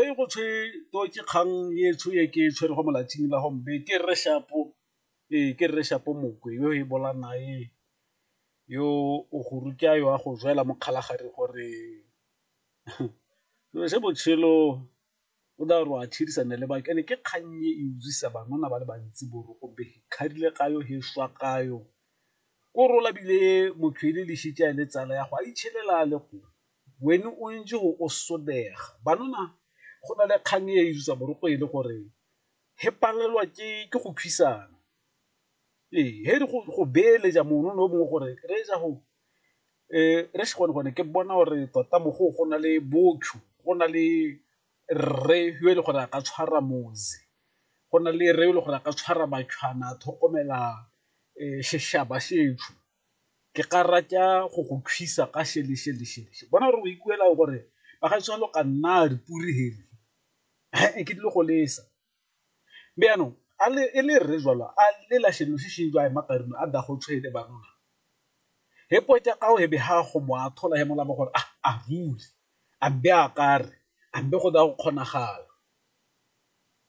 e go tshwe to ke kgang e tsho e ke tshwere go molatsing la gombe ke rre shapo ee ke rre shapo mokwe yo e bola nae yo o go ruta yo a go jwela mo kgalagare gore selo se botshelo o da re a tshedisana le baka ene ke kgang e e utlwisa banona ba le bantsi boroko be kgadile ka yo he swa ka yo ko rola bile motho e le lešitša le tsala ya go a itshelela le go Wene o ntse o o sodega. Banana go na le kgang e utswa boroko e le gore he palelwa ke ke go kgwisana, ee he re go beeletsa mono no mongwe gore re ja go re se gone gone ke bona gore tota mo go go na le botho go na le rre yo e leng gore a ka tshwara motse, go na le rre e le gore a ka tshwara a tlhokomela seshaba . ke ka rata go go thusa ka šelešelešeleshe bona gore o ikuela gore ba ga tshwalo ka nna re puri hele e ke dilo go lesa be yaanong a le e le re jalo a le la shelo se sheng jwa makarino a da go tshwele ba rona he po tsa ka o he be ha go mo a thola he mola mo gore a rule a be a kare a be go da go kgonagala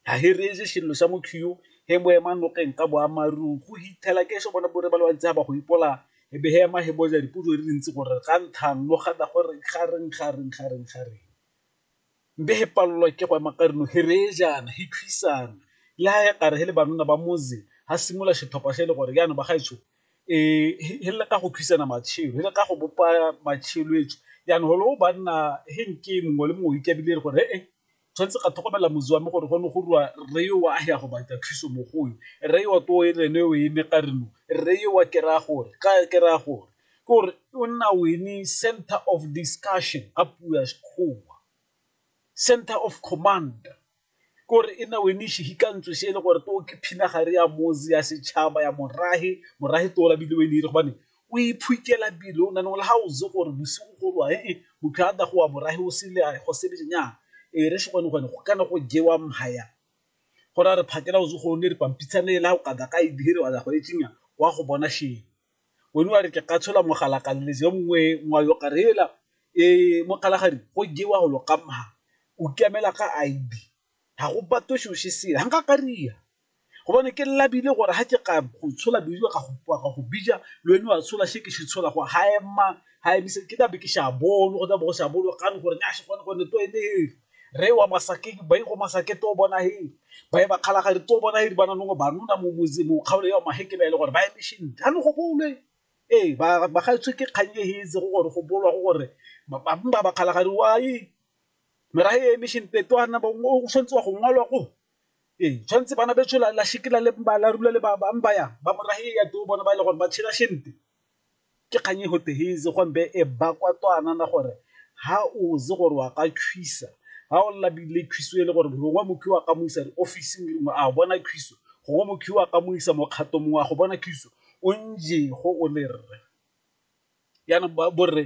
Ha he reetse xirilo xa motho yo, he mo ema nokeng ka boammaarung. Go hithela ke xo bona bore ba le bantsi ha ba go ipola, he be he ema he boja dipotso di le ntsi gore, Ga nthang lo gana gore ga reng, ga reng, ga reng, ga reng? Mbe he palelwa ke go ema ka rino, he reye jaana, he thwisana. Le ha he kare he le banona ba motse, ha simola xetlhopha xe le gore, Jaanong bagaetsho, ee, he leka go thwisana matshelo, he leka go bopa matshelo etsho. Jaanong holo banna he nke mongwe le mongwe o ikabile gore, He-e, Tshwanetse ga tlhokomela motse wa me gore gone go rua rre yo wa ya go batla thuso mo go yo. Rre yo to e rene o eme ka re no rre yo wa ke raya gore ka ke raya gore ke gore o nna o eme center of discussion ka puo ya Sekgowa, center of command ke gore e nna o eme sehikantswe se e le gore to ke phina gare ya motse ya setšhaba ya morahe, morahe to o labile o e ne e re gobane o iphukela pele o nane le ga o itse gore bosigo go rwa ee motho a dago wa borahe o sele a go sebe nya e re se gone gone go kana go jewa mhaya go ra re phakela o itse go ne re pampitshane e la o kada ka e dire wa go e tsinya wa go bona she wene wa re ke ka tshola mogala ka le je mongwe ngwa yo karela e mokalagadi go jewa go lo kamha o kemela ka ID ga go batho sho se se hanga ka ria Gobane ke labile gore ga ke ka go tshola bedio ka go bija le wena wa tshola she ke shi tshola go ha ema ha emise ke dabe ke sha bolo go dabe go sha bolo ka gore nya shi gone gone to ene he re wa masake ba go masake to bona he ba e ba khala ga re to bona he di bana nongo ba nona mo motse mo kgaolo ya ma he ke ba ile gore ba eme shi ha no go bole e ba ba ga tswe ke kganye he itse go gore go bolwa go gore ba ba ba khala ga re wa e mera he eme shi nte to ana ba o swantse wa go ngwalwa go Ee, tshwanetse bana betso la shekela le ba la rula le ba bang ba ya ba morahe ya to bona ba ile gore ba tshela shente ke kganye go teheze go mbe e ba kwa to anana gore ha o ze gore wa ka khwisa ha o la bile khwiso e le gore longwa mokhi wa ka mo isa office ngwe ngwe a bona khwiso gongwe mokhi wa ka mo isa mokgato mongwe a go bona khwiso o nje go o le rre yana ba borre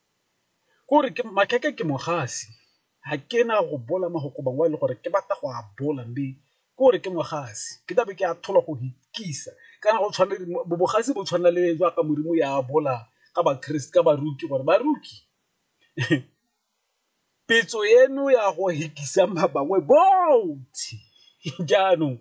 Kore ke makhekhe ke mogasi ga ke na go bola mo go koba wa e le gore ke batla go a bola mme ke gore ke mogasi ke tlabe ke a thola go ikisa kana go tshwana le bogasi bo tshwana le jaaka modimo ya bola ka ba-Christ-e, ka baruki gore baruki . Pitso eno ya go hekisa ba bangwe bontsi jaanong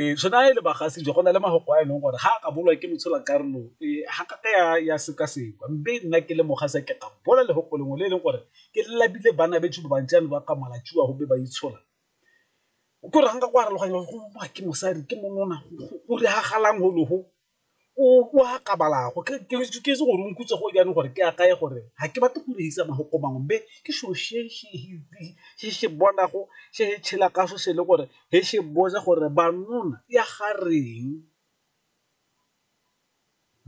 ee so na e le bagasi jo go na le mafoko a e leng gore ga a ka bolwa ke motshola karolo ee ga ka ka ya sekasekwa mme nna ke le mogasa ke ka bola le goko lengwe le e leng gore ke labile bana betsho ba bantsi ano ba ka malatsiwa gobe ba itshola ke gore ga nka go arologanya go ke mosadi ke monona go diragalang go logo o a kabalago ke itse gore o nkutse go jaanong gore ke akaye gore ga ke batle go reisa mafoko mangwe be ke selo se se bonago se se tshela ka so se le gore ge se boja gore banona ya ga reng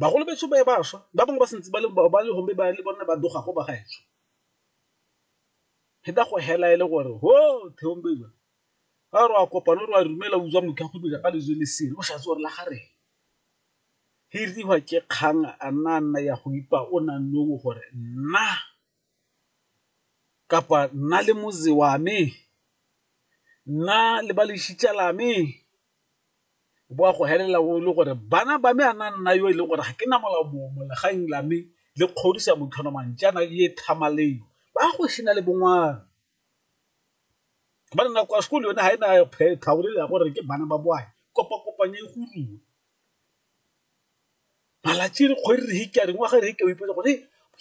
bagolo betso ba ba swa ba bangwe ba santse ba le ba le gombe ba le bone ba doga go ba gaetsho pheta go hela e le gore ho theombelo ga re a kopana re a dumela utswa motho a kgopetsa ka lejwe le sele o sa tsore la gare he riwa ke kgang a nna a nna ya go ipa o nang nowo gore nna kapa nna le motse wa me nna le ba lešitša la me bo a go helela o le gore bana ba me a na nna yo e leng gore ga ke na molao mongwe mo legang la me le kgodisa motho ona mantšana ye thamaleo ba go sena le bongwana ba re nako ya sekolo yone ga e na tlhaolele ya gore ke bana ba boae kopa-kopanye e godiwe malatsi re kgwedi re hika re ngwaga re hika o ipotsa gore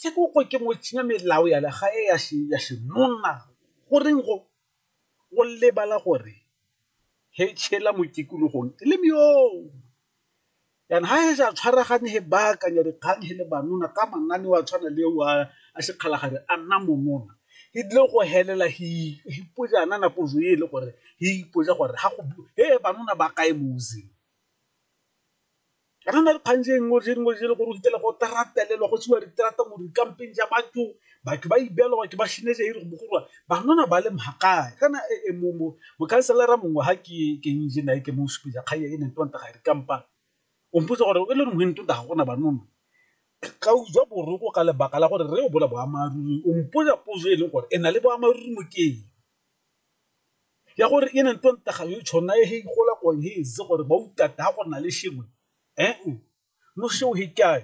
se ke ko ke motshinya melao ya lega e ya se ya senonna go reng go go lebala gore he tshela mo tikologong le meo Jaana ha he ja tshwaragane he baakanya dikgang he le banona ka mananeo a tshwana le eo a sekgalagadi a nna monona, he tlile go helela he ipoja nana pojo e le gore he ipoja gore ha go he banona ba kae mo using. Kana na dikgang je nngwe je nngwe je le gore o fitlhela go teratelelwa go tswiwa diterata mo dikampeng ja batho batho ba ibeelwa batho ba shinetse e re go bogolwa banana ba le mhakae kana e, e, mokhanselara mongwe ga ke ke nje nae ke mo supeja kganya e neng tonta ga re kampa o mpotsa gore e le nngwe ntonta ga gona banona ka utswa boroko ka lebaka la gore re o bola boamaruri o mpoja pozo e leng gore e na le boamaruri mokeng ya gore e neng tonta ga yo tshona e he gola ko he ze gore ba utata go na le shengwe eh no sheo he kae